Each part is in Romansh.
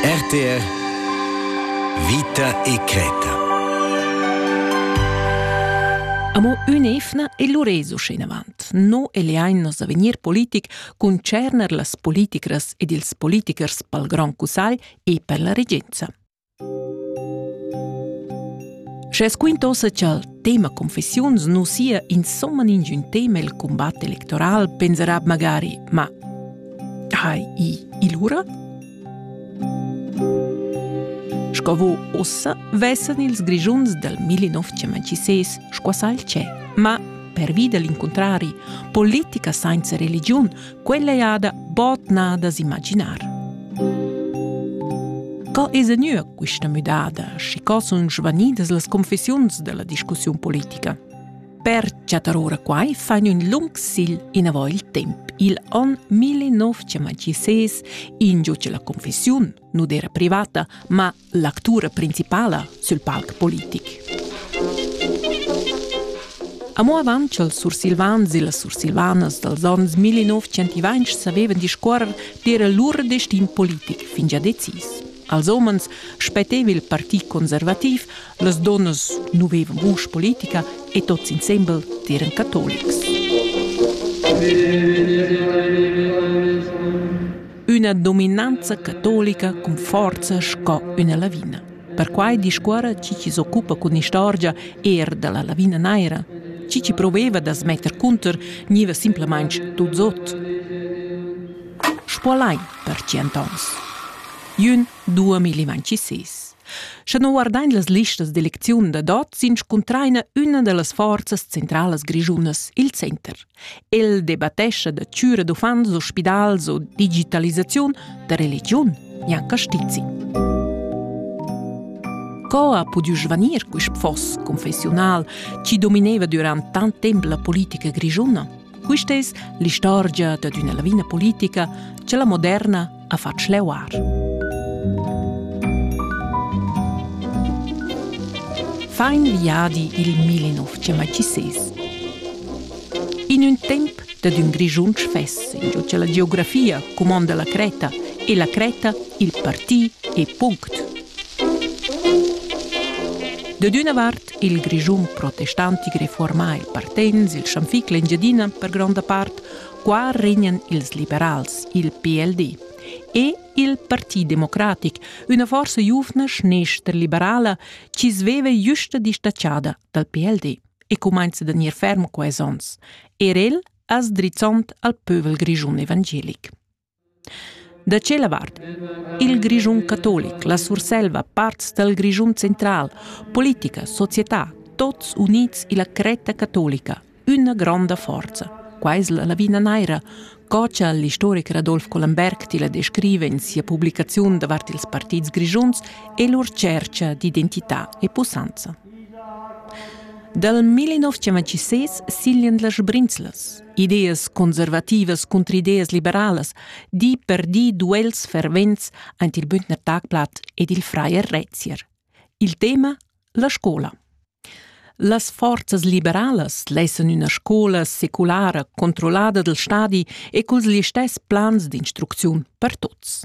RTR Vita e creta Amo ün'efna e l'uresu schinavant. No e leain nos avegnir politic concerner las politicras ed ils politichers pel Grand Cussagl e per la regenza. Sche squintosa cha'l tema confessiuns nu sia insomma ingün tema i'l cumbat electoral, pensarà magari «Ma hai i il ura?» Sco vo ossa vessan ils Grischuns dal 1926 squassà il tschè. Ma pervi da l'incuntrari, politica sainza religiun Quella ei ada bod nà da s'imaginar. Co es gnüa quista müdada, schi co sun svanidas las confessiuns dalla discussiun politica? Per chattar ora quai fain ün lung sigl inavo il temp. Il on 1926 ingiucia la confessiun nu d'eira privata, ma l'actura principala sül palc politic. Amo avant cha'l sursilvans e las sursilvanas dals ons 1920 savevan discuorrer d'eira lur destin politic fingià decis. Als homens spetteva il partit conservativ, las donnas nu vevan vusch politica e tots insembel eran catolics. üna dominanza catolica cun forza sco üna lavina. Perquai discuorra chi chi s'occupa cun istorgia eir da la lavina naira. Chi chi proveva da smetter cunter gniva simplamaing tuts ot. Spuolai per tschient ans. Jün 2026. Sche non guardain las listas d'elecziun da dot, s'inscuntraina üna da las forzas centralas grischunas, il center. El debattescha da chüra d'uffants o spidals o digitalisaziun da religiun, Jan Castizi. Co ha pudü svanir quist foss confessiunal chi domineva durant tant temp la politica grischuna? Quista es l'istorgia dad üna lavina politica cha la moderna a fatg leuar. Fain viadi il 1906. In un temp dad un grigiun fess, in che la geografia cumonda la Creta e la Creta il parti e punct. Da d'una vart il grigiun protestantic reformà il Partens, il Schanfic l'Engiadina per gronda part, Qua regnan ils liberals, il PLD, e il Parti democratic, üna forsa giuvna schnestra-liberala chi sveva justa distatschada dal PLD e cumainza da gnir ferm quais ons, er el as drizzond al pövel grischun evangelic. Da tschella vart il Grischun catolic, la Surselva, parts dal Grischun central, politica, società, tots units illa cretta catolica, üna gronda forza. Quai es la lavina naira, co cha l'istoricher Adolf Collenberg tilla descriva in sia publicaziun davart ils partits grischuns e lur tschercha d'identità e pussanza. Dal 1956 siglian las sbrinzlas. ideas conservativas cunter ideas liberalas, di per di duels fervents aint il Bündner Tagblatt ed il Freier Rezier. Il tema la scola. Las forzas liberalas lessan üna scola seculara controllada del stadi e culs listess plans d'instrucziun per tuts.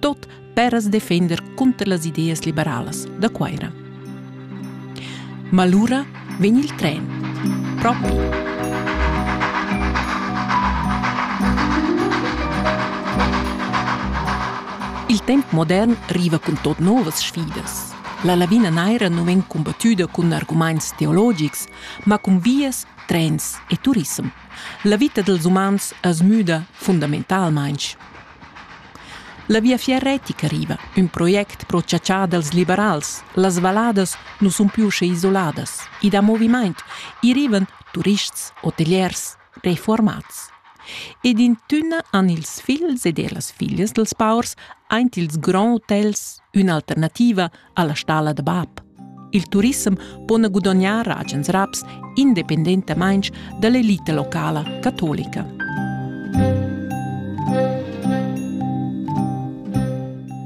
tot per as defender cunter las ideas liberalas da Cuaira. Ma lura vegn il tren propi. Il temp modern riva cun tot novas sfidas. La lavina naira non vegn combattuda cun arguments teologics, ma cun vias, trens e turism. La vita dels umans es müda fundamentalmaing. La Viafier retica riva, ün project pro chatschar dals liberals. Las valladas nu sun più sche isoladas. I dà movimaint. I rivan turists, hoteliers, refuormats. Ed in tünna han ils figls ed ellas figlias dals paurs aint ils grands hotels ün'alternativa alla stalla da bab. Il turissem po gudognar agens raps independentamain dall'elita locala catolica.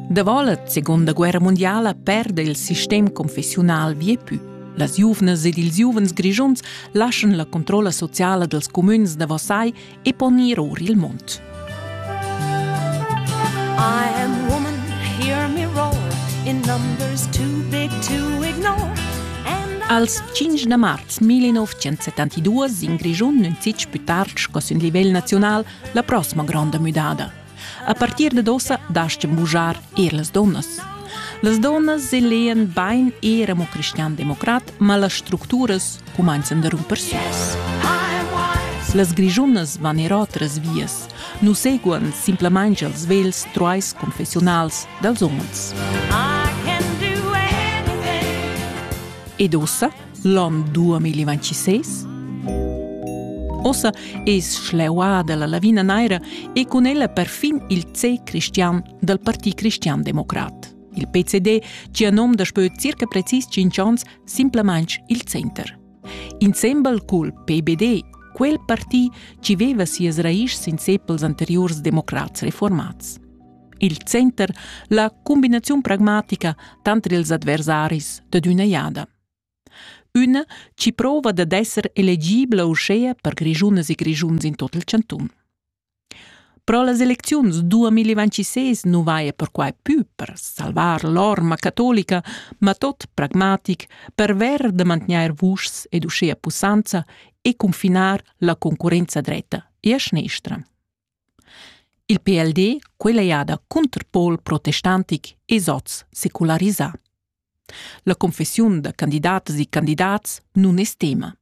Davolet, seconda guerra mondiala, perde il sistem confessiunal viepü. Las giuvnas ed ils giuvens grischuns lascian la controlla sociala dels comüns da Versailles e pon ir or il mund. I am woman, hear me roar, in numbers too big to ignore. Als 5 da marz 1972 in Grischun nun fitg pü tard sco sün livel naziunal la prossima gronda müdada. A partir dad ossa dastgan bugiar er las donnas. Las donnas selean bain era mo cristian-democrat, ma las structuras cumanzan da rumper süs. Las grigiunas van er otras vias. Nu seguan simplamain els vels truais confessionals dels umens. Ed ossa l'on 2026? Ossa es schleuada la lavina naira e cun ella perfin il C cristian dal Parti cristian democrat. Il PCD, cia nom daspö circa precis 5 ans, simplamaing il Center. Insembel cul PBD, quel parti ci veva sias raischs in sepels anteriors democrats reformats. Il Center, la combinaziun pragmatica tanter ils adversaris dad üna jada. Üna chi prouva dad esser elegibla uschea per grischunas e grischuns in tot il chantun. Pro las elecziuns 2026 nu vaja perquai pü per salvar l'orma catolica, ma tot pragmatic perver da mantgnair vuschs ed uschea pussanza e cunfinar la concurrenza dretta e a schnestra. Il PLD quella jada cunterpol protestantic es hoz secularisà. La confessiun da candidatas e candidats nun es tema.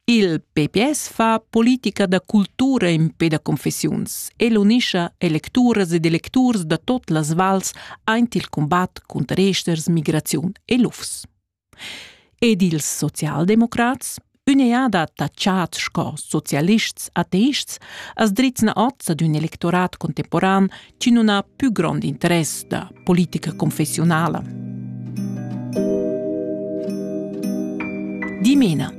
Il PPS fa politica da cultura in pe da confessiuns e l'unischa electuras ed electurs da tot las vals aint il combat cunter esters, migraziun e lufs. Ed ils socialdemocrats, ün'eada tachats sco socialists ateists, as drizzna oz ad ün electorat contemporan chi nun ha pü grond interess da politica confessiunala. Dimena.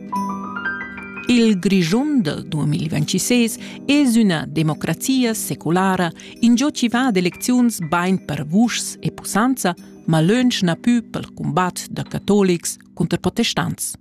Il Grischun del 2026 es üna democrazia seculara, ingio chi va ad elecziuns bain per vuschs e pussanza, ma lönch na pü pel cumbat da catolics cunter protestants.